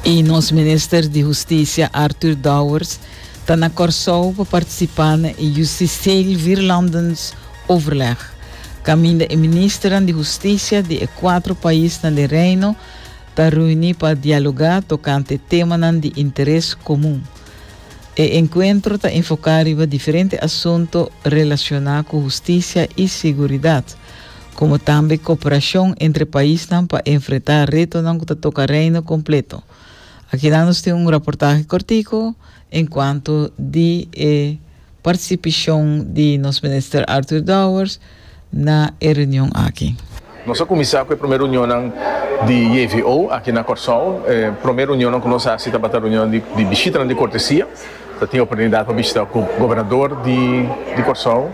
Y nos Minister di Husticia Arthur Dowers ta na Corsou pa participa na e Justitieel Vierlandens overleg, caminda e Ministeran di Husticia di e cuatro paisnan di Reino ta reuni pa dialoga tocante temanan di interes comun. E encuentro ta enfoca riba diferente asunto relaciona cu husticia y seguridad, komo tambe koperashon entre paisnan pa enfrentá retonan ku ta toka Reino kompleto. Akinan nos tin un raportahe kortiko enkuanto di e partisipashon di nos Minister Arthur Dowers na e reunion aki. Nos a kuminsá ku e promé reunionnan di JVO aki na Kòrsou. E promé reunionnan ku nos hasi tabata reunionnan di bishitanan di kortesia. Ta tin oportunidat pa bishita ku gobernador di Kòrsou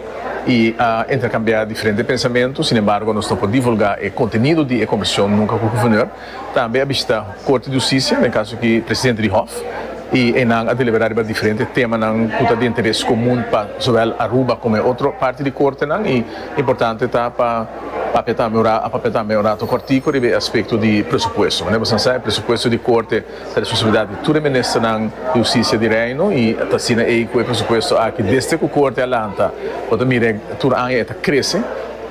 i interkambiá diferente pensamentu. Sin embargo, nos no por divulgá e kontenido di e kombersashon nunka ku Guvernor. Tambe a bishita Korte di Hustisia, den kaso aki presidente di Hòf, i einan a deliberá riba diferente temanan ku ta di interes komun pa zowel Aruba komo e otro parti di Kortenan. I importante ta pa papia tambe un rato, a papia tambe un rato kòrtiku riba e aspekto di presupuesto. Manera boso a sa, e presupuesto di Korte. Ta responsabilidat di tur e Ministernan di Hustisia di Reino y ta asina ey cu e presupuesto aki desde cu Corte a lanta bo ta mira tur aña e ta crece.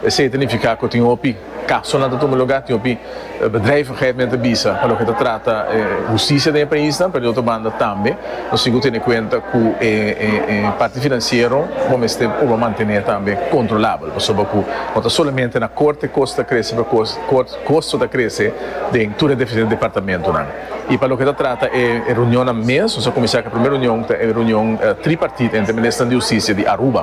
Esey ta nifica cu tin hopi casonan ta tuma lugar, tin hopi bedrijvigheid men ta bisa pa loke ta trata hustisia den e paisnan, pero di otro banda tambe nos tin cu tene cuenta cu e parti financiero bo mester por bo mantene tambe controlabel pasobra cu no ta solamente na Corte cos ta crece, pero cos. Kosto ta krese den tur e diferente departamentonan i pa loke ta trata e reunionnan mes nos a kuminsá ku e primer reunion ta e reunion tripartit entre Ministernan di Hustisia di Aruba,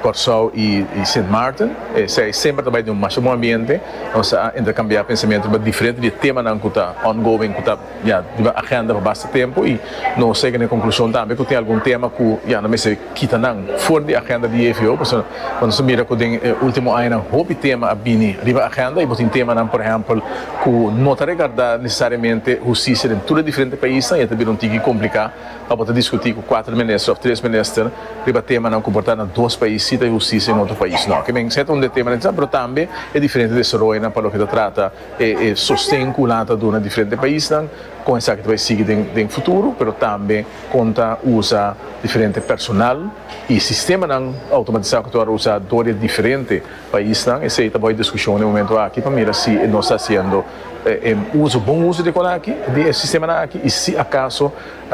Kòrsou i Sint Maarten. Esei semper ta bai den un masha bon ambiente. Nos a interkambiá pensamentu riba diferente di e temanan ku ta ongoing ku ta. Ya diba agenda pa basta tempu y nos sega na e conclusion tambe cu tin algun tema cu ya no mester kita nan for di e agenda di JVO pasobra cuando nos ta mira cu den e ultimo añanan hopi tema a bini riba e agenda y bo tin temanan por ehempel cu no ta regarda necesariamente husticia den tur e diferente paisnan y e ta bira un tiki complica pa bo ta discuti cu cuater minister of tres minister riba temanan cu por ta na dos pais si ta e husticia y na otro pais no. Kimen siete un di e temanan interesante pero tambe e diferente desaroyonan pa loke ta trata e e sosten ku nan ta duna diferente paisnan, kon esaki ta bai sigui den den futuro, pero tambe kon ta usa diferente personal i sistemanan outomatisá ku ta wòrdu usá dor di e diferente paisnan. Esei ta bai diskushon den momentu aki pa mira si nos ta hasiendo e uso bon uso di kon aki di e sistemanan aki i si akaso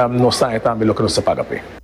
nos tambe loke nos ta paga p'e.